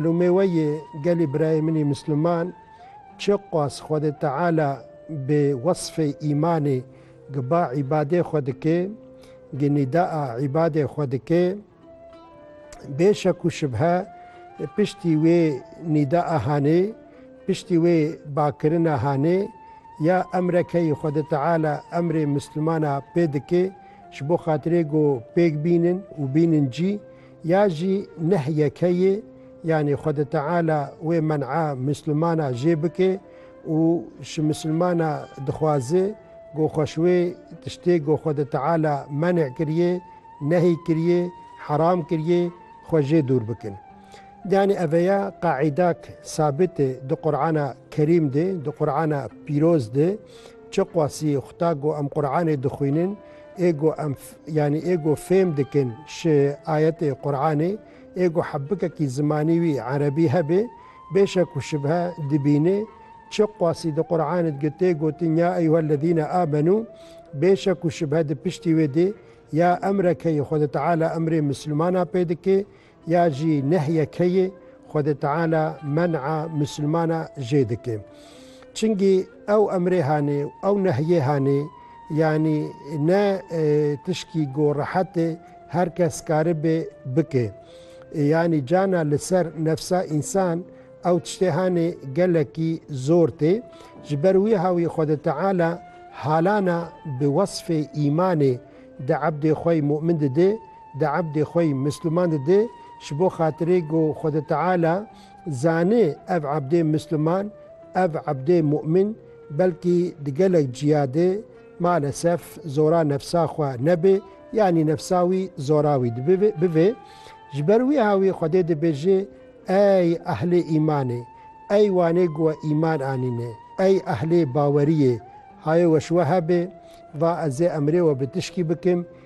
Lê me weyê gelê birayê min ê Misliman çi qas Xwedê Teala bi wesfê îmanê giba îbadê xwe dike, gi nîdaa îbadê xwe dike, bê şek û şibhe piştî wê nîdaa hanê, piştî wê bakirina hanê, ya emrekeyê Xwedê Teala emrê Mislimana pê dike, ji bo xatirê ku pêk bînin û bînin cî, Ya jî neh yekeyê, yanî Xwedê Teala wê men'a Mislimana jê bike û ji Mislimana dixwaze ku xwe ji wê tiştê ku Xwedê Teala men'e kiriye, nehî kiriye, heram kiriye, xwe jê dûr bikin. Yanî eveya qaîdak sabit e di Qur'ana Kerîm de, di Qur'ana Pîroz de, çi qasî, xuta ku em Qur'anê dixwînin, ê ku em yanî ê ku fêm dikin ji ayetê Quranê ê ku hebikekî zimanî wî erebî hebe bê şek û şibhe dibîne çi qasî di Quranê de tê gotin ya eyyuhellezîne amenû bê şek û şibhe di piştî wê de ya emrekeyê Xwedê Teala emrê misilmana pê dike Ya jî nehye keyê Xwedê Teala men'a misilmana jê dike. Çingî ew emrê hanê û ew nehyê hanê, yanî ne tişkî go rehet e her kes karibe bike. Yanî cana li ser nefsa însan ew tiştê hanê gelekî zor tê. Ji ber wîha wî Xwedê Teala halana bi wesfê îmanê di ebdê xwe yê mu'min dide, Di ebdê xwe yî Misliman didê ji bo xatirê ku Xwedê Teala zanê ev ebdê Misliman, ev ebdê Mu'min belkî di gelek ciya de malesef zora nefsa xwe nebe yanî nefsa wî zora wî bibe. Ji ber wîha wî Xwedê dibêje Ey ehlê îmanê, ey wanê ku we îman anîne, ey ehlê baweriyê, haye weş we hebe, va ez ê emrê we bi tişkî bikim,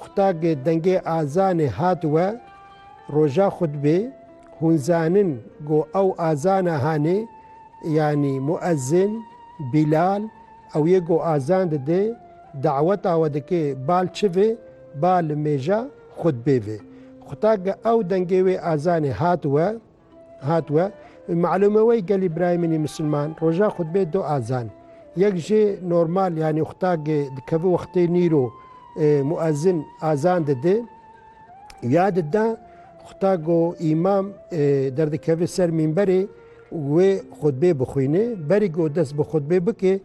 Xutag dengê azanê hat we roja xutbê, hûn zanin ku ew azana hanê yanî muezzin, Bilal, ew yê ku azan dide, daweta we dike bal çi ve, bal mêja xutbê ve. Xutag ew dengê wê azanê hat we, Hat we malûme wey gelî birayê min ê misilman roja xutbê du azan yek jê normal yanî xutagê dikevi wextê nîro muezin azan didi ya dida xutag û îmam derdikevi ser mînberê wê xutbê bixwîni berî ku dest bi xutbê bike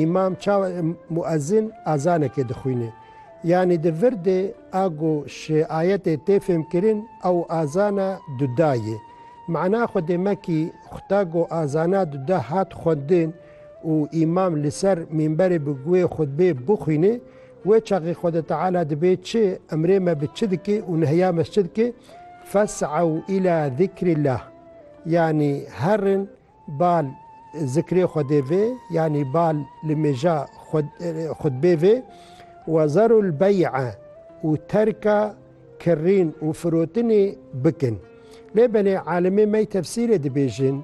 Îmam çawa muezîn ezanekê dixwîne. Yanî di vir de a ku ji ayetê tê fêmkirin ew ezana duda ye. Mana xwe dê mekî xuta ku ezana duda hat xwendin û îmam li ser mîmberê bi guhê xutbê bixwîne, wê çaxê Xweda Teala dibê çi, emrê me bi çi dike û nehiya me ji çi dike, Fes'ew îlâ zikrîllah, yanî herin, Bal zikrê Xwedê vê yanî bal li mêja xutbê vê wezarul bey'a û terka kirrîn û firotinê bikin. Lê belê alimê me tefsîrê dibêjin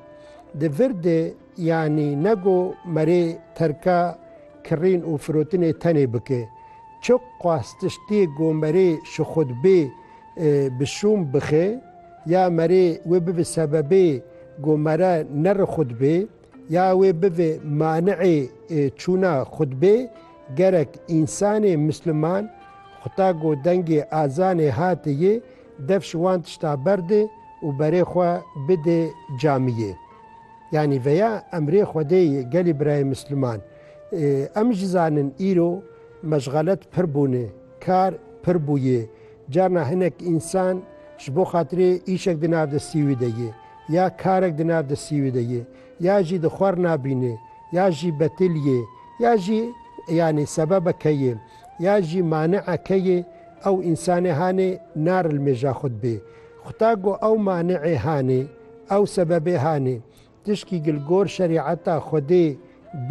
di vir de yanî nego merê terka kirrîn û firotinê tenê bike. Çi qas tiştê go merê şi xutbê bi şûm bixe. Ya merê wê bibe sebebê ku mere nere xutbê, ya wê bibe mani'ê çûna xutbê, gerek însanê misliman xuta ku dengê azanê hate yê, dev ji wan tişta berde û berê xwe bide camiyê. Yanî veya emrê Xwedê ye gelê birayê misliman. Em jî zanin îro meşxalet pir bûne, kar pir bûye. Carna hinek însan ji bo xatirê îşek di nav destî wî de ye ya karek di nav destî wî de ye ya jî di xwar nabîne ya jî betil ye ya jî yanî sebebeke ye ya jî manieke ye ew însanê hanê narilmêja xwe dibê. Xuda ku ew maniê hanê ew sebebê hanê tişkî gilgor şerîeta Xwedê bê